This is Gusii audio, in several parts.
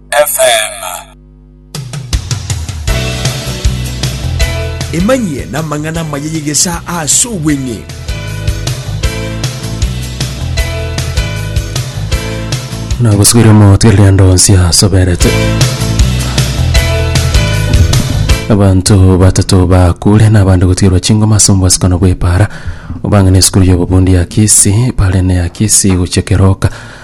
FM. Emanyie namang'ana amaya y'egesaa aase obweng'e. nagosubire omotwe eriando onsi asoberete abanto batato bakure nabande gotirwa chingoma ase omobasukano bw'epara obang'ane esukuru y'obobundi ya kisi pare ne ya kisi gochia keroka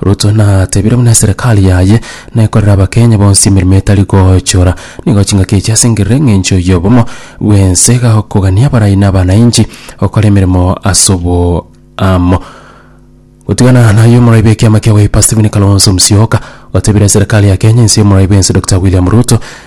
Ruto natebire buna eserekari yaye nekorera abakenya bonsi emeremo etari gochora nigo chingaki echi ase engerero eng'encho y'obomo bw'ense iga okogania abarai na abanainchi gokora emeremo ase oboamo. Gotigana naye omorai bw'ekiama kia Wiper Stephen Kalonzo Musyoka otebire eserekari ya Kenya ense y'omorai bw'ense Dokita William Ruto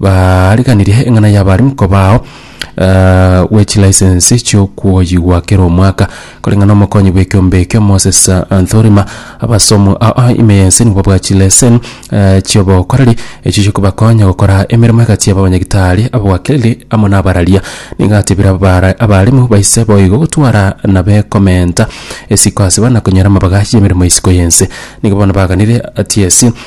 Bariganirie eng'ana y'abaremi kobao gwe chilicense chi'okwoyigwa kera omwaka, koreng'a nomokonyi bw'ekeombe ekio Moses Anthorima. Abasomu aa ime y'ense nigo babwate chilesen eh, chi'obokoreri echio chikobakonya gokora emeremo egati y'ababanyagitari, ababwakeri amo nabararia. Nigo atebire abara- abaremu baise boigo gotwara na bekomenta esiko ase bana konyora amabaga y'emeremo y'isiko y'ense. Nigo bono baganire TSC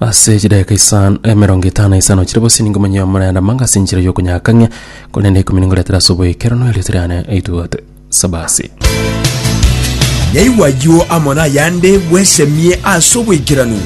Ase chidakika isan emerongo etano na isano chire bosi ningo monyie omorenda manga ase enchera y'okonyakang'ia, korende ikomi ningoretera ase oboikeranu erioto riane rituate. Sabasi. Naigwa ayio amo nayande bwesemie ase oboikeranu.